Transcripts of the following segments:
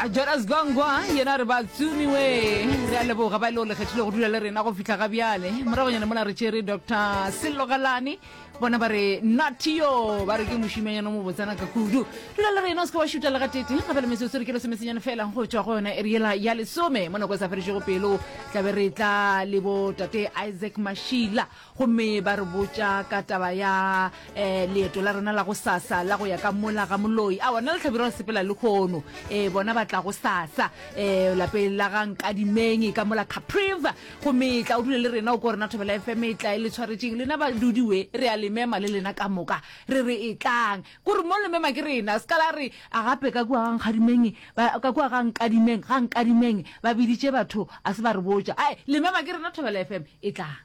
a jonas gongwa yena re ba tsumiwe re a leboga ba e le go lekgethile go dula le rena go fitlha ga bjale moragonyana mona re tšere dr selogalane bona ba re natio ba re ke mošimanyana mo botsana ka kudu dula le rena o seke wa šuta le ga tete gape le metsotso re ke lesomesenyane fela go tšwa go yona eriela ya lesome mo nako e sa feditšego pelo tlabe re tla le bo tate isaac mašila Gomme ba re botša ka taba ya eh, leeto la rena la go sasa la go ya ka mola ga moloi. Awa, nna le Tlhabirwa re sepela le kgono. Eh, bona ba tla go sasa eh, lapeng la ga Nkadimeng ka mola Capriva. Gomme tla o dule le rena o ko rena Thobela FM e tla e le tshwaretšeng. Lena badudi we, re a le mema le lena ka moka. Re re e tlang. Kore mo le mema ke rena. Se ka la re, a gape ka kua ga Nkgadimeng, ba, ka kua ga Nkadimeng, ga Nkadimeng, ba biditše batho, a se ba re botša. Ae, le mema ke rena Thobela FM e tlang.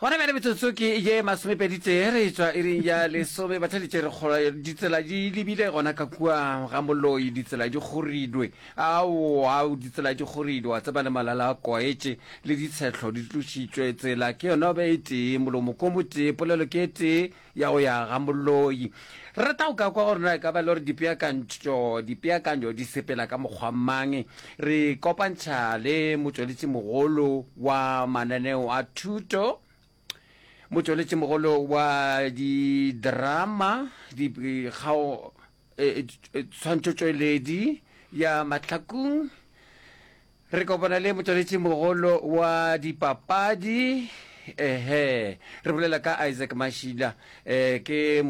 Gona bjale metsotso ke ye masomepeditee re etšwa iring ya lesome. Batheletše re kgolwa ditsela di lebile gona ka kua ga Moloi, ditsela di kgoridwe. Ao, ao, ditsela di kgoridwe, wa tseba, le malala a kwaetše, le ditshehlo di tlošitšwe. Tsela ke yona be e tee, molomo ko motee, polelo ke e tee. ya go ya ga moloi. Re rata go ka kwa gore na e ka ba le gore dipeakantšo dipeakanyo di sepela ka mokgwa mang. Re ikopantšha le motšweletšimogolo wa mananeo a thuto, motšweletšimogolo wa didrama, dikgao e, e, tshwantšotšweledi ya mahlakung re kopana le motsweletši mogolo wa dipapadi ehe re bolela ka isaac mashila um ke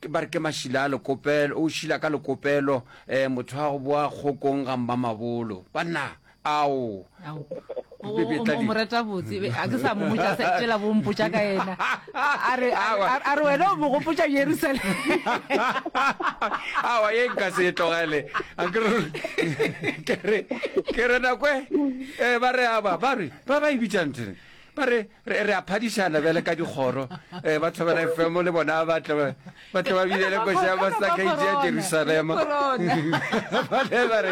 ba re ke mashila a lekopelo o šila ka lekopelo um motho wa go boa kgokong ga mma mabolo banna Ao. Ao. O, o, o, o mo reta botse be a ke sa mo botša se tšela bo mpotša ka yena a re a re- a re- a re wena o mo gopotša jerusalem awa ye nka se e tlogele a ke re- ke re ke re nakwe eh, ba re aba ba re ba ba e bitšang tene ba re Re, re a phadišana bjale ka dikgoro. Eh, ba Thobela FM le bona ba tla ba- ba tla ba binele koša ya mahlakaitše ya Jerusalema. Bale ba re,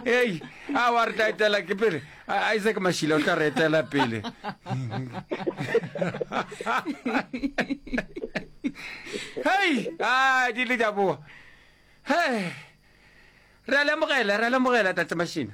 Hei, a wa re tla etela ke pele. A- Isaac Mashila o tla re etela pele. Hei, a di le di a boa. He. Re a lemogela, re a lemogela Tate Mashina.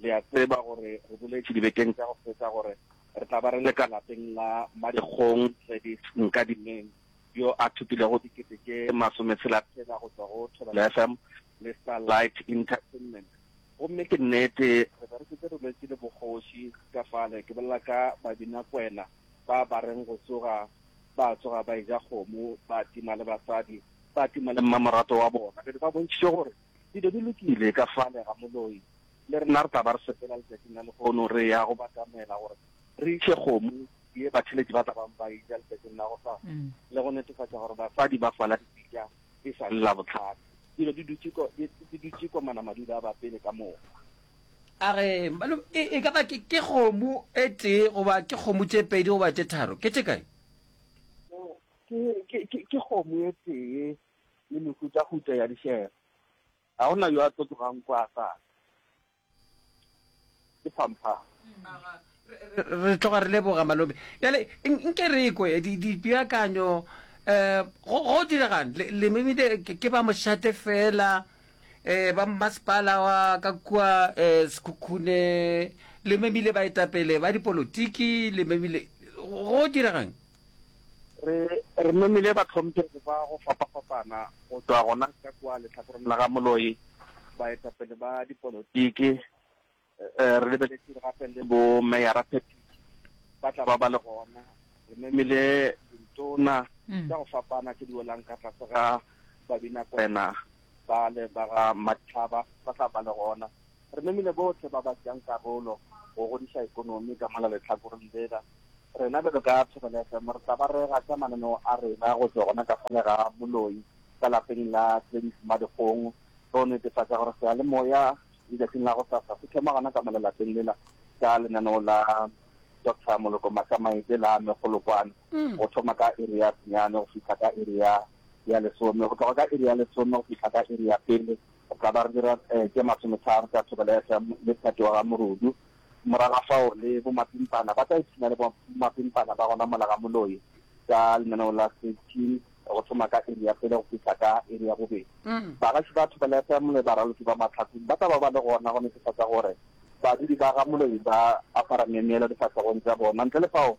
Le a tseba gore re boletše dibekeng tša go feta gore re tla ba re le ka lapeng la Madikgong Gladys Nkadimeng, yo a thopilego dikete tše masometshela-tshela go tšwa go Thobela FM le Starlight Entertainment. Gomme ke nnete, re be re šetše re lwetše le bogoši ka fale, ke bolela ka babinakwena ba ba reng go tsoga ba tsoga ba eja kgomo, ba tima le basadi, ba tima le mmamoratwa wa bona. Be ba bontšhitše gore Dilo di lokile ka fale ga moloi. Le rena re tla ba re sepela letšatšing la lehono re ya go batamela gore re iše kgomo ye batheletši ba tla bang ba e ja letšatšing la gosasa le go netefatša gore basadi ba fala dipitša e sa le Labohlano. Dilo di dutše ko di, di dutše ko manamadula a bapele ka moka. A re, Malome, e, e ka ba ke, ke kgomo e tee goba ke kgomo tše pedi goba tše tharo? Ke tše kae? Ke, ke, ke, ke kgomo e tee le mehutahuta ya dihlela. Ga go na yo a tlo tlogang kwa a sa tle. Ke phamphama. Re tloga re leboga, Malome. Bjale nke re ekwe dipeakanyo. Um Go direga'ng? Le memile ke ba mošate fela, um ba mmasepala wa ka kua um Sekhukhune, le memile baetapele ba dipolotiki, le memile. Go direga'ng? Re, re memile bahlomphegi ba go fapafapana go tšwa gona ka kua lehlakoreng la ga Moloi, baetapele ba dipolotiki, e, re lebeletše gape le bo-meyara Phetiši, ba tla ba ba le gona. Re memile dintona tša go fapana tše di welang ka tlase ga Babinakwena bale ba ga Madihlaba, ba tla ba le gona. Re memile bohle ba ba tšeang karolo go godiša ekonomi ka mona lehlakoreng lela. Rena bjalo ka Thobela FM re tla ba rega ka mananeo a rena go tšwa gona ka fale ga moloi ka lapeng la Gladys Madikgong go netefatša gore seyalemoya letšatšing la gosasa se thoma gona ka mona lapeng lela ka lenaneo la Doctor Moloko Matsamaetše la Megolokwane go thoma ka iri ya senyane go fihla ka iri ya ya lesome go tloga ka iri ya lesome go fihla ka iri ya pele O ka ba re dira tše masometharo tša thobeletša le phetogo ga morudu. Morago ga fao le bomapimpana ba tla ipshina le bomapimpana ba gona mola ga moloi ka lenaneo la Sitchin go thoma ka iri ya pele go fihla ka iri ya bobedi. Bagaši ba thobeletša le baraloki ba mahlaku ba tla ba ba le gona go netefatša gore badudi ba ga moloi ba apara memeelo difahlegong tša bona. Ntle le fao,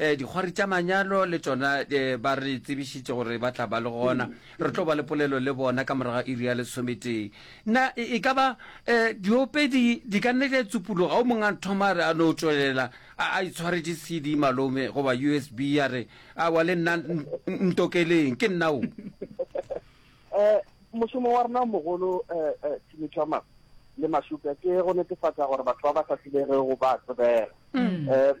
Dikgwari tša manyalo le tšona ba re tsebišitše gore ba tla ba le gona. Re tlo ba le polelo le bona ka morago ga iri ya lesometee. Na e ka ba diopedi di ka nne di a tsupologa? O mongwe a thoma a re, a no tšwelela a itshwaretše CD, malome, goba USB, a re, Aowa, le nna ntokeleng, ke nna o. Mošomo wa rena o mogolo, Timicamas le Mashupša, ke go netefatša gore batho ba ba sa tsebegego ba a tsebega.